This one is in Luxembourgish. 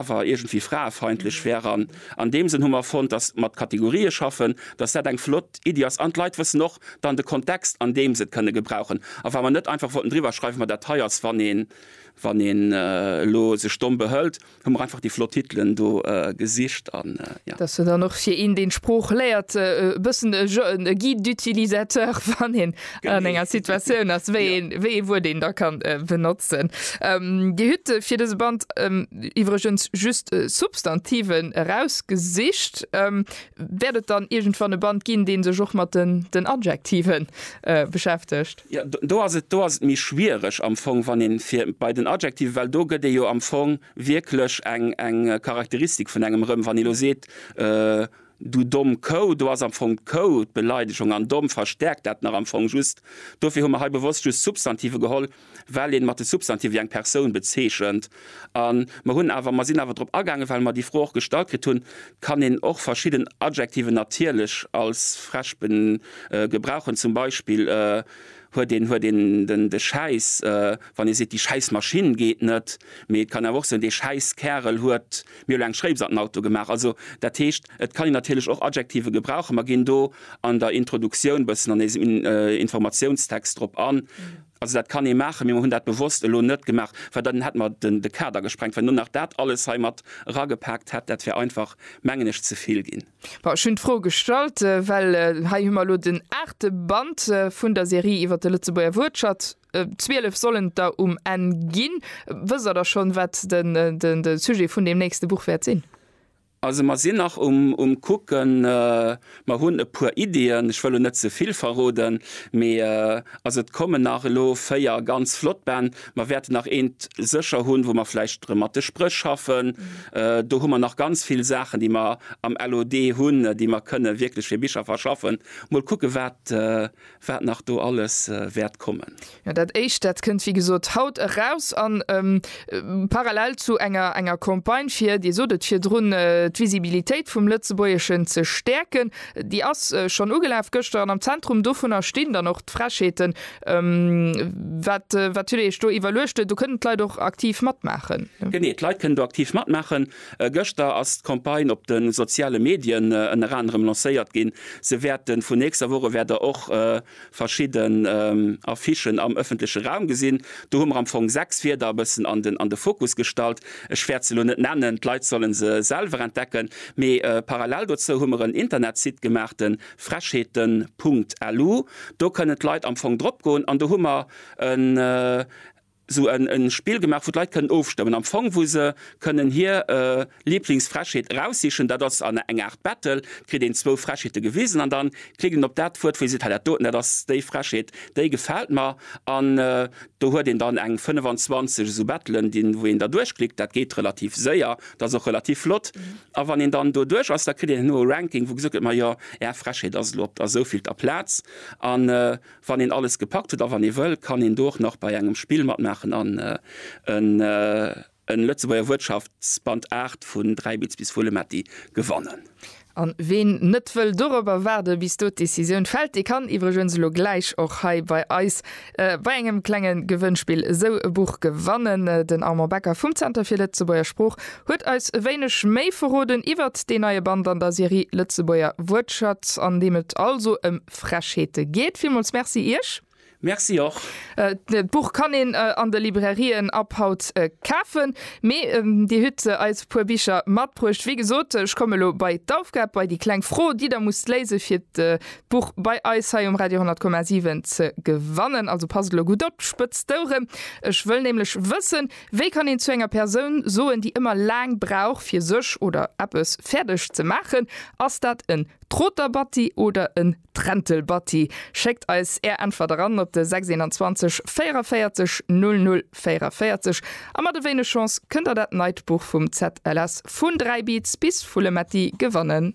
awer iergendwéi fraefeindlech wär. An an deem Sënn hu mer fonnt, dass mat Kategorië schaffen, dass dat eng flott Iddi ass an d'Leit wëssen och dann de Kontext, an deem se et kënne gebrauchen. A wa mer net einfach wollten driwwer schreiwen, ma dat hei ass, wann een wann een elo sech domm behëlt, hu mer einfach déi flott Titelen do gesicht. An jo. Dass se dann och fir een, deen d'Sprooch léiert, e bëssen e Guide d'utilisateur, wann een an enger Situatioun ass, wéi een, wéi ee Wuert een da kann benotzen. Dir hutt fir dëse Band iwwregens just Substantiven erausgesicht. Wäert et dann iergendwann e Band ginn, dee sech och mat den Adjektive beschäftegt? Jo, do ass et, do ass et méi schwiereg am Fong, wann ee fir bei den Adjektive, well do gëtt ee jo am Fong wierklech eng Charakteristik vun engem erëm, wann ee elo seet, Du domm Kou, do ass am Fong d'Kou d'Beleidegung an domm verstäerkt dat nach am Fong just. Dofir hu mer hei bewosst just Substantive geholl, well ee mat de Substantive eng Persoun bezeechent. A mer hunn awer, mer sinn awer drop agaangen, well mer déi Fro och gestallt kritt hunn, Kann een och verschidden Adjektiven natierlech als Verb gebrauchen? Zum Beispill huet een, huet een de Schäiss, wann ee seet, Déi Schäissmaschinn geet net. Mee et kann awer och soen, Dee Schäisskärel huet. Mir hu lo eng Schréips an den Auto gemaach. Also, dat heescht, et kann een natierlech och Adjektive gebrauchen. Mer ginn do an der Introduktioun bëssen an eisem Informatiounstext drop an. Also dat kann ee maachen, mee mer hunn dat bewosst elo net gemaach, well dann hätte mer de Kader gesprengt. Wann een dann nach dat alles hei mat eragepaakt hätt, dat wär einfach, mengen ech, ze vill ginn. Bon, ech hunn d'Fro gestallt, well hei hu mer elo den aachte Band vun der Serie iwwert de Lëtzebuerger Wuertschatz. 12 sollen et der um Enn ginn. Wësst Der da schonn, wat de Sujet vun deem nächste Buch wäert sinn? Also mer sinn nach um Kucken. Mer hunn e puer Iddien, ech wëll elo net ze vill verroden. Mee also et kommen nach elo véier ganz flott Bänn. Mer wäerten nach eent sécher hunn, wou mer vläicht erëm mat de Spréch schaffen. Do hu mer nach ganz vill Saachen, déi mer am LOD hunn, déi mer kënne wierklech fir Bicher verschaffen. Mol kucke wat Wat nach do alles wäert kommen. Jo, dat éischt, dat kënnt wéi gesot haut eraus an parallel zu enger enger Campagne fir, Dir sot et virdrun, d'Visibilitéit vum Lëtzebuergeschen ze stäerken. Déi ass schonn ugelaf gëschter an am Zentrum dovunner stinn dann och d'Frechheeten. Wat huet Dir Iech do iwwerluecht? Do kënnen d'Leit och aktiv matmaachen. Genee, d'Leit kënnen do aktiv matmaachen. Gëschter ass d'Campagne op de soziale Medien ënner anerem lancéiert ginn. Se wäerte vun nächster Woche wäert der och verschidden Affichen am ëffentleche Raum gesinn. Do hu mer am Fong sechs Wierder e bëssen an de Fokus gestallt. Ech wäert se elo net nennen, d'Leit solle se selwer entdecken. Mee parallel dozou hu mer en Internetsite gemaach, de frechheeten.lu. Do kënnen d'Leit am Fong dropgoen an do hu mer en. sou e Spill gemaach, wou d'Leit kënnen ofstëmmen, am Fong wou se kënnen hir Liblingsfrechheet eraussichen. Dat ass an eng Aart Battle, kritt een zwou Frechheete gewisen an da klickt een op dat Wuert, wou ee seet, hei dat doten, dat ass déi Frechheet, déi gefält mer. An do huet een dann eng 25 esou Battelen, déi wou een da duerchklickt. Dat geet relativ séier, dat ass och relativ flott. A wann een dann do duerch ass, da kritt een herno e Ranking, wou gesot gëtt, majo, Är Frechheet ass elo op der souvielter Plaz. An Wann een alles gepackt huet a wann ee wëll, kann een do och nach bei engem Spill matmaachen an en Lëtzebuerger Wuertschaftsband 8 vun Dräibitz bis Vulemetti gewannen. An ween net wëll dorobber waarde bis do d'Decisioun fält, dee kann iwwregens elo gläich och hei bei eis bei engem klenge Gewënnspill esou e Buch gewannen. Den Armand Becker vum Zenter fir Lëtzebuerger Sprooch huet eis e wéineg méi verroden iwwert deen neie Band an der Serie Lëtzebuerger Wuertschatz, an deem et also ëm Frechheete geet. Villmools Merci Iech. Merci och. D'Buch kann een an de Librairien ab haut kafen. Mee Dir hutt eis e puer Bicher matbruecht. Wéi gesot, ech komme lo bei d'Aufgab, bei déi kleng Fro, déi Der musst léisen, fir d'Buch bei eis hei um Radio 10,7 ze gewannen. Also passt lo gutt op, spëtzt d'Oueren. Ech wëll nämlech wëssen, Wéi kann een zu enger Persoun soen, déi ëmmer laang brauch, fir sech oder eppes fäerdeg ze maachen? Ass dat en D'Roterbatti oder en Trentelbatti? Schéckt eis är Äntwert eran op de 621 44 00 44 a mat e wéineg Chance kënnt der dat neit Buch vum ZLS Vun 3 Beats bis Full Metti gewannen.